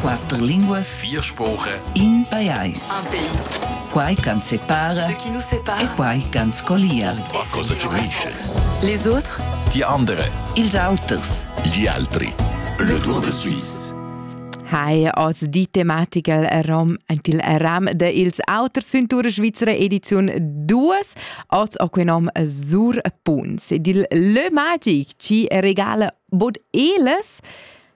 Quatter linguas. Vier spuche. In pajais. Un pays. Quai ch'ans separa. Ce qui nous sépare. E quai ch'ans collia. Und was kostet Schweiz? Les autres. Die andere. Ils auters. Gli altri. Le Tour de Suisse. Hi, oz die Thematik rom ent il ram de ils auter Cintura Svizzera edizion 2 oz o que nom sur Punz. Dil Le Magic ci regala bod eles.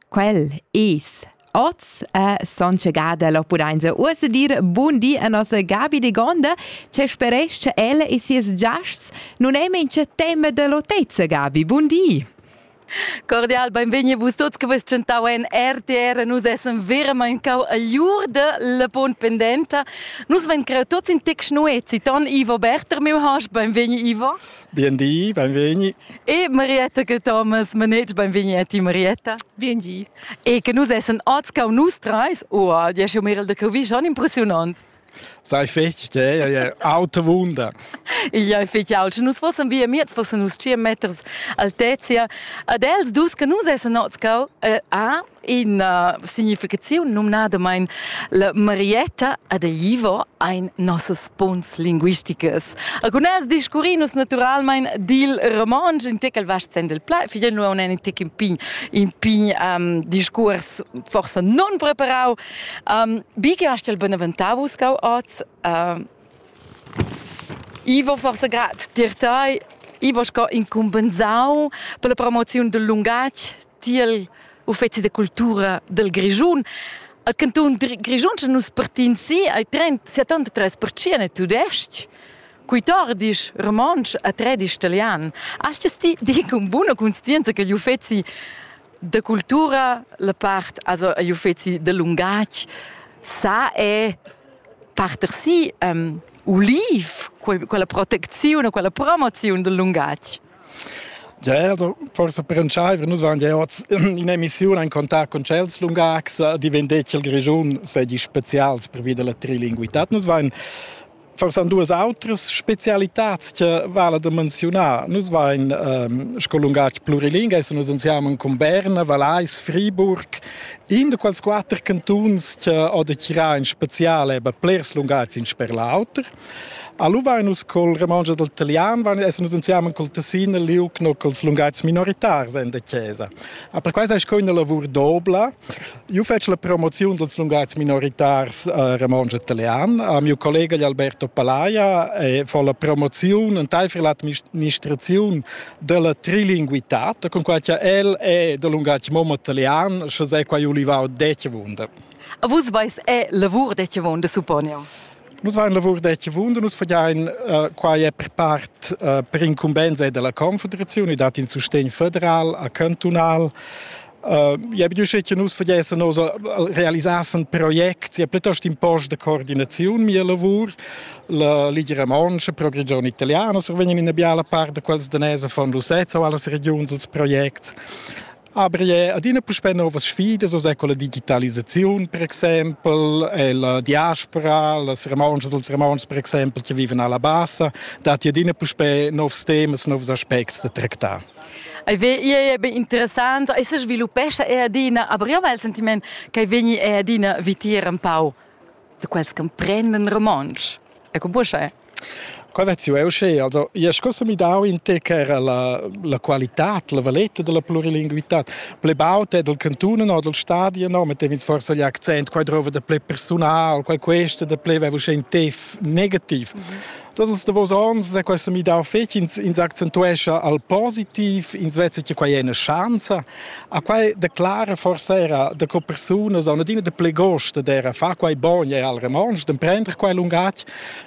Quel es oz a son chegada lo pudainsa uossa dir bun di a nossa Gabi de Gonda, che speresch ella e sies giasts non è mincha tema dell'otezza Gabi. Bun di! Cordial benvegni a vus tuts che vus tschentau en RTR, nus essen veramente cau all'ur della pon pendenta. Nus ven creu tuts in tex nuezi, ton Ivo Berter, meu has benvegni Ivo. Biendi, benvegni. E Marietta che Thomas Manet, benvegni a ti Marietta. Biendi. E che nus essen oz cau nus treis, oh, diesch Mirel de Covi, schon impressionant. Sei fetg, eh? Autowunder. Ia fetg aut. Nus fossen via miez, fossen nus 5 meters altezia. Ad els dus che nus essen oz cau, eh, ah, ina significaziun numnadamain la Marietta ad Ivo ein nossas punts linguisticas. Alcunas discurrin nus naturalmein dil romontsch, in tec al vast sen del plai, fidel nu un tec in pign, in pign um, discurs forsa non preparau. Um, bi che hast el beneventau uscau oz, um, I va forsa grad tier tei. I va sco incumbensau per la promoziun dil lungatg tiel uffeci da cultura dal Grischun. Al cantun Grischun sche nus partins si ai trent settantatres per cient è tudestg. Quatordisch romontsch e tredisch italian. Hast es ti di con buna conscienza che gli uffeci da cultura, la part, also agli uffeci da lungatg, sa è parter si um, uliv, quella protecziun e quella promoziun del lungatg? Ja, also forse per entscheiver, nus waren ja oz in emissione in contact con cels lungacs, di vendetti il Grigiun sedi spezials per via della trilinguità. Nus waren forse an duas autres spezialitats che vale da menzionar. Nus waren ehm, sco lungatg plurilingue, se nus ansiamo con Berna, Valais, Friburg, In da quels quatter cantuns che ho da girar in spezial è be blers lungatgs in sper l'auter. Allo vain nus col romontsch e dal talian, vain essen nus insieme col tessin e liuc no culs lungatgs minoritars in da chesa. A per quai seis co üna lavur dobla. Io fetsch la promoziun dals lungatgs minoritars eh, romontsch e talian. A mio collega Alberto Palaia e fo la promoziun entaifer l'administraziun dalla trilinguitad, con quai cha el è da lungatg mom italian, sche sei quai olivau detje wunder. A vus vais è lavur detje wunder supponiu? Nus vain lavur detje wunder, nus fagiain uh, quai è per part uh, per incumbenza della Confederazione, dat in sustegn federal a cantonal, Ja bi che nus vediesen nos realisassen project ja plitost in post de coordinaziun mia lavur la Ligia Romancha pro region italiana so vegnan in biala part de quels danese von Lucezza o alles regions als projects Aber je, adina puspè novas sfidas, also ecco la digitalisazione per exempel, e la diaspora, las romances, els romans per exempel che vivono alla bassa, dat adina puspè novs temas, novs aspects da tractar. Ei vegni era bein interessant, ei sesviluppescha era adina, aber io val il sentiment che vegni era adina vitier empau de quels che prenden romontsch. Ecco buscha. Eh? Cadaziu è usce, also io scossa mi dau in te che era la, la qualità, la valetta della plurilinguità. Ple baut è del cantone no, del stadio no, mettev'ins forse gli accent, qua drova de ple personal, qua questo de ple avevo usce in te negativ. Mm -hmm. Tots ils davos ons è questo midau fetg, ins, ins accentuescha al positiv, ins vesa che quai è una chance. A quai declara forse era de co persunas an adina de ple gost d'era fa quai bon è al remange, d'emprender quai lungatg,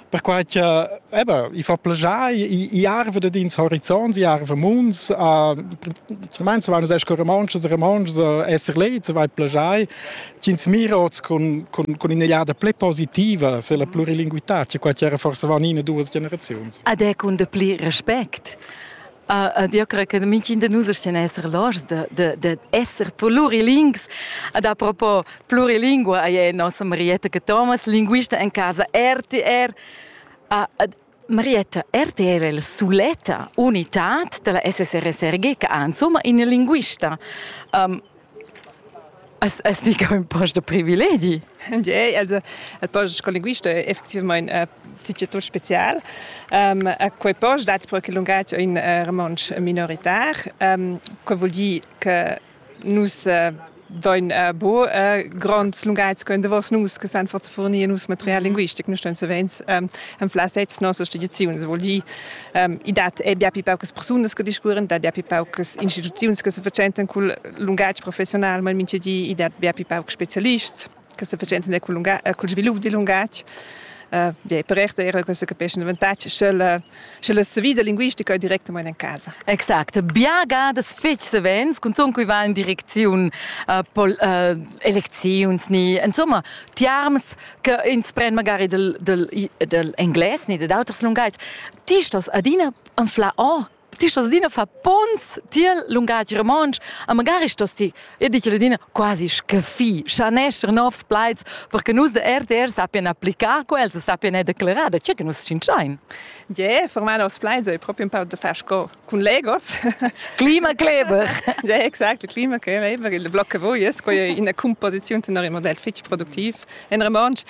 perquai che eben, i fa plagiai, i, i arve de ins horizonts, i arve munds, uh, semens vanno esco remanges, remanges, esser lei, se vai plagiai, Ch'ins mira oz cun, cun, cun in'egliada pli positiva se la plurilinguità, che quai era forse van in e duas generaziuns. Ad è cun de pli respect. Uh, eu cred che mintgin de nus stia esser loschs de, de, de esser plurilings. Ad a propos plurilingua, ei è nossa Marietta che Thomas, linguista en casa RTR. Uh, Marietta RTR è la suletta unitad della SSRSRG che ha insomma ina linguista. Um, As, as dica un po de privilegi. Jei, also, il post con linguista è effettivamente un ticket special. Um, a quei post dat perché il linguaggio in uh, romansch minoritar, um, che vuol dire che Nus dain bo grands lunghezs können was nus che san forza fornir nus material linguistic nu ston savens en flasets nossas tradiziuns vuol dir i dat è bia pi paucas persunas che discuoren dat bia pi paucas instituziuns che se fatschentan cul lungatg professional mal minchadi i dat bia pi paucs specialists che se faceva entender col, lunga, col svilup dil lungatg. Uh, yeah, per erte era questa capisce un avantaggio se la, se la vita linguistica è direttamente in casa. Exact. Biagadas fetg savens, cunzun cui va in direcziun uh, pol, uh, elecziuns ni, insomma, tiarms che ins pren magari del, del, del engles ni de d'auters lungaits. Ti stos adina anfla o oh, ti stos adina far pons tiel lungatg romontsch a magari stos ti e dici adina quasi scaffi schanescher novs plaids perché nus de RTR sappien applicar quels e sappien er declarar da tge che nus scinschain Yeah, for my novs plaids è proprio un po' da far sco con Legos. Klimakleber. ja, exact, Klimakleber, eben, il blocca voi es quai ina composiziun tenor il modell fitg produktiv in romontsch.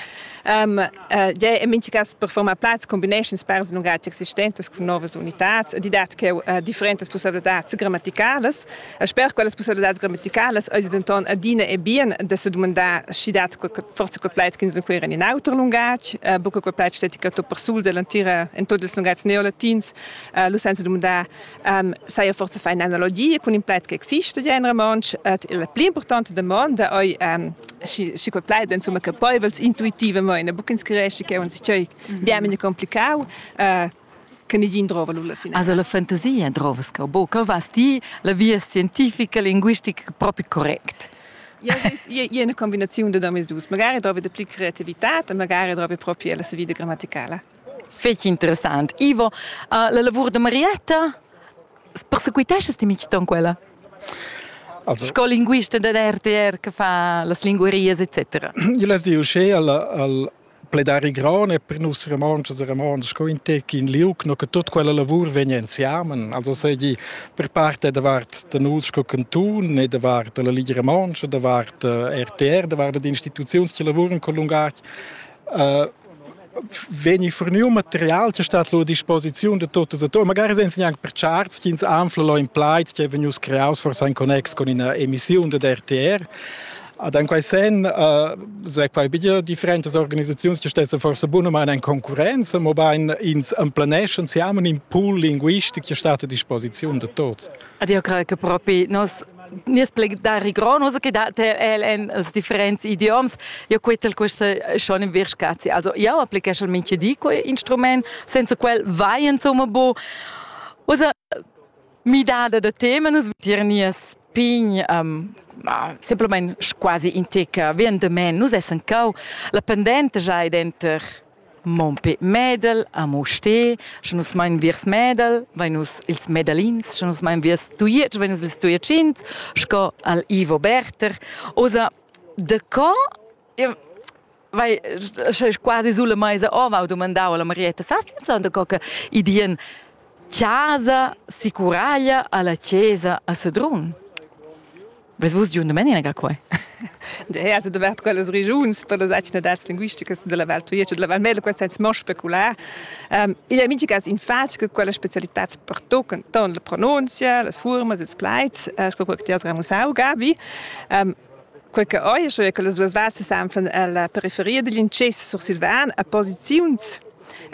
Um, Uh, ja è mincha cas performa plats combinations pers lungatg existentes cun novas unitats ed dat che uh, differentas possibilitads grammaticales e sper quellas possibilitads grammaticales eis denton adina e bien da se domandar schi dat forse quel plaid che inquira in auter lungatg uh, buca quel plaid steti che to per sul dell'antira in tots ils lungatgs neolatins uh, lu senza domandar Um, saja forse fai analogie con in plaid che existe ja in romansch et la pli importante domanda ei um, si si quel plaid insomma che paivels intuitivamente buc inscresci che uns cei bien mine complicau uh, che nidin drova lulla fine. Also la fantasia drova scabo, che vas ti la via scientifica linguistica proprio correct? Ja, je una combinazione de domis dus. Magari trovi de pli creatività, magari trovi proprio la vita grammaticale. Fetg interessant. Ivo, uh, la lavur da Marietta, persequitesches ti mitg ton quella? Also, sco linguista da RTR che fa las linguarias etc. Io les diu sche al, al pledari grone per nus romances e romances co in tec in liuc no che tot quella lavur vegna insiamen also sei di per parte da vart da nus co cantun e da vart la Liga Romanche da vart eh, RTR da vart da instituziuns che lavuren con lungac vegni furniu material che stat a disposiziun da tutti attori. Magari senza neanche per charts che ins anfla lo in plait che è vegnius creaus forse in connex con una emissione da RTR. Ad en quei sen uh, se quai bia differentas organisazioni che stessen forse buno ma in concorrenza, mo bein ins emplaneschan siamo un pool linguistic che stat a disposizione de tutti. Ed io creo che propi nos nies plegdari grond, uso che dat el en els differents idioms, io quetel questa schon in vir scazi. Also io applicheschel minche di quei instrument, senza quel vai insomma bo. Usa midada da tema nus tirnias pign um, semplamain quasi inteca, vien de men, nus essen cau la pendente già denter Mompé Mädel a Mustér, sche nus mein viers Mädel, vein nus ils Mädelins, sche nus mein viers Tujetsch, vein nus ils Tujetschins, sco al Ivo Berter. Osa, de co? Io, vai, sche quasi sulle meise ova ho dumandau alla Marietta Sastianson de co che idien casa si curaglia alla chiesa a Sedrun. Ves vus giu domenica ga quai? Ja, also dovert quellas regiuns per las atgnadads linguisticas della Val Tujetsch e della Val Mela, questa senza mo specular. Um, igl è migigas in fatg che quella specialitats pertocan ton la pronunzia, las furmas, ils plaids, uh, sco quel che ti has ramusau, Gabi. Um, quei che oi, scho che las duas vals s'anflan alla periferia digl incess sursilvan a posiziuns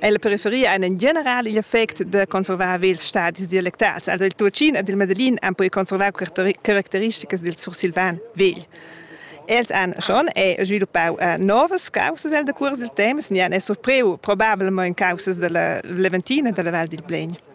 El preferia einen generali effect da conservar vels stadis dialectals. Also il Tuocin ed il Medellin han poi conservar caracteristikas dil sursilvan vegl. Els han schon e sviluppau uh, novas causas el da cuors dil temps, ni han è surpriu probabilmente causas della Leventina della Val dil Blegn.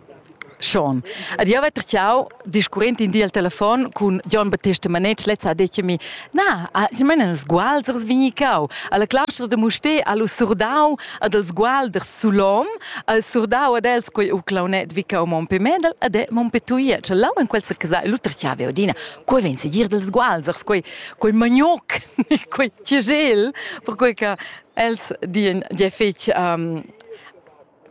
Schon. Ad io vetter ciao discurrent in di al telefon cun Gian Battista Manetsch, lezza ha detto mi, na, ich meine, als Gualsers vegni cau, alla claustra de Musté allo surdau ad als Gualders Sulom, al surdau ad els quei u claunet vi cau Monpe Medel ad è Monpe Tuia, cioè là in quel casa Luther ci aveva Odina, quei ven seguir dels Gualsers, quei, quei manioc, quei cigel, per quei che els dien, je fec um,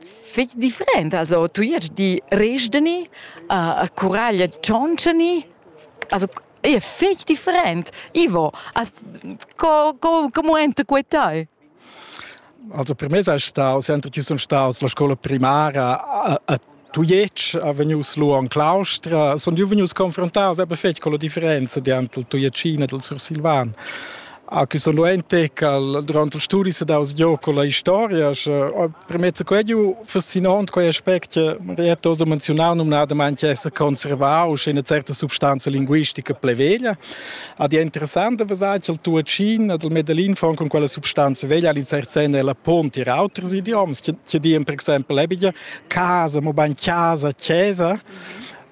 fich different. Also tuiet di resdeni, uh, curaglia tschonscheni, also è fich different. Ivo, as, co, co, como enta quei tai? Also per me sei staus, enter chi sun staus la scola primara a, a Tujetsch, a venius lu an Claustra, sun iu venius confrontaus aber fetg con la differenza di ant il Tujetschina del Sursilvan. Ah, che sono ein tecal durante il studi se daus gio con la historia premezza quei giu fascinant quei aspect rietto so menzionar num nada manche essere conservau in una certa substanza linguistica pleveglia ad è interessante vasai che il tuacin ad il medellin von con quella substanza veglia in certa senna la ponti ir alters idioms che di per esempio ebige casa mo ban casa chiesa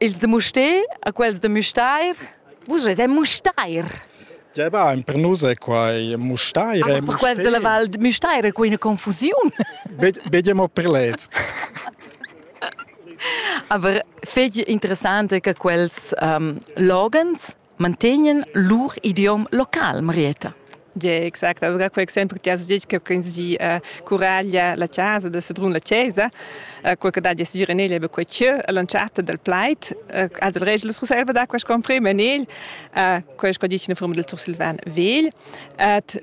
Ils da Mustér e quels da Müstair? Vus eis ein Mustair. Ja, bah, per nus è quai Mustair. Ah, per quels della Val de Müstair è quai una confusiun. Vediamo per lez. Aber fetg interessante che quels um, logans mantegnan lur idiom local, Marietta. Yeah, exact. Allora quei exempel che has detto che quindi eh, curaglia la casa da Sedrun la Chiesa, eh, quel che dà di sir en egl be quei cheu lanciata del plaid, eh, also il regel rusalva da quest comprime en egl, eh, quei che dice in forma del sursilvan vegl, et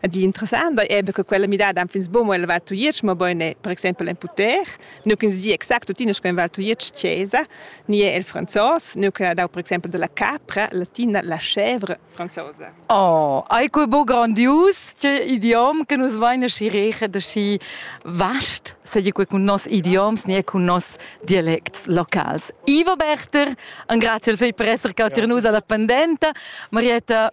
Ed interessant è er che quella midada en fins buc mo el Val Tujetsch, mabain per exempel en Puter, nu che si exact tuttina sco en Val Tujetsch Chiesa, ni è il franzos, nu che ha dau per exempel della capra latina la chèvre franzosa. Oh, ei quei bo grandius, che idiom che nus vain aschi reget aschi vast, seigi quei cun nos idioms ni cun nos dialects locals. Ivo Berter, un grazie al fei per essere cauter nus alla pendenta. Marietta,